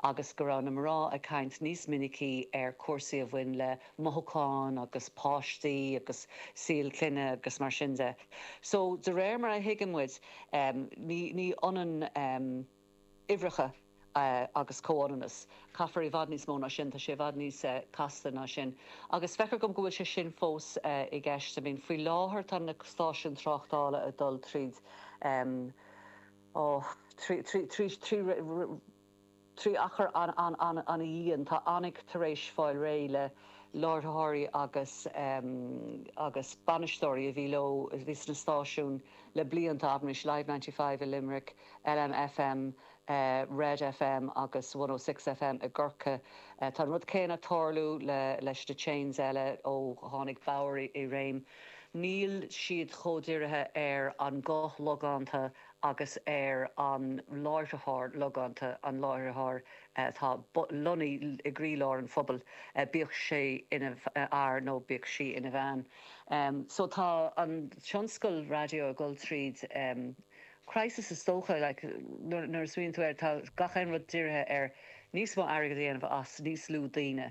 agus go raibh na mná ag caint níos minice ar cúrsaí a bhain le mothúcháin agus páistí agus saol clainne agus mar sin de. So de réir mar a thuigeann muid ní ionann uimhreacha agus comhionannas. Caithfear i bhfad níos mó ná sin, tá sé i bhfad níos casta ná sin. Agus feictear dhom go bhfuil sé sin fós i gceist. I mean faoi láthair tá na stáisiúin tráchtála ag dul tríd. Ó, trí achar an, an-dian, tá Onic tar éis fáil réidh le láithreoirí agus, agus bainisteoirí a bhí leo, a bhí sna stáisiúin le blianta, abair Live Ninety Five i Luimneach, LMFM, Red FM agus One O Three FM i gCorcaigh. Tá an rud céanna ag tarlú le, leis na chains eile ó tháinig Bauer i réim. Níl siad chomh dírithe ar an nguth logánta agus ar an láithreoir logánta, an láithreoir atá lonnaí i gcroílár an phobail, bíodh sé ina fhear nó bíodh sí ina bhean. So tá an tionscal raidió ag dul tríd crisis is dócha, like nuair a smaoiníonn tú air tá gach aon rud dírithe ar níos mó airgead a dhéanamh as níos lú daoine.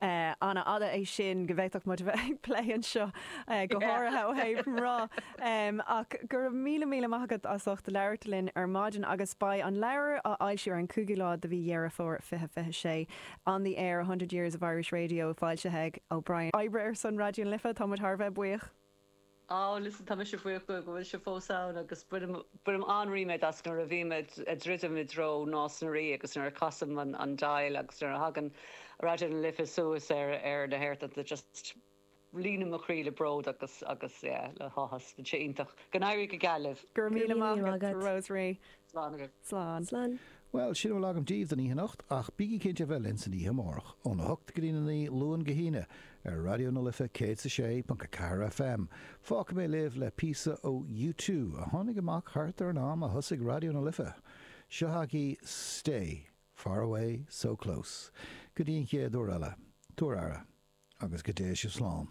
An-fhada é sin go bhféadfadh muid a bheith ag plé anseo go háirithe ó thaobh mná. Ach go raibh míle míle maith agat as ucht labhairt linn ar maidin agus beidh an leabhar á fhoilsiú ar an 5ú lá de mhí Dheireadh Fómhair 2026. On the Air, 100 Years of Irish Radio foilsithe ag O'Brien. Ó, ar son Raidió na Life, tá muid thar a bheith buíoch. Bhuel is tá mise buíoch go bhfuil sibh fós ann agus bainim an-ríméad as nuair a bhím ag druidim i dtreo Nás na Rí agus nuair a chasaim an dial agus nuair a thagann Raidió na Life suas ar na haerthonnta just líonann mo chroí le bród agus agus yeah le háthas. Tá sé iontach. Go n-éirí go geal libh. Go raibh míle maith agat, Rosemary. Slán agaibh. Slán. Slán. Bhuel, sin a bhfuil agam díbh don oíche anocht, ach bígí cinnte a bheith linn san oíche amárach, óna hocht go dtína naoi, Luan go hAoine, ar Raidió na Life 106.4 FM. Fágfaidh mé libh le píosa ó U Two, a tháinig amach thart ar an am a thosaigh Raidió na Life. Seo chugaibh Stay, Far Away, So Close. Go dtí an chéad uair eile, tugaigí aire, agus go dté sibh slán.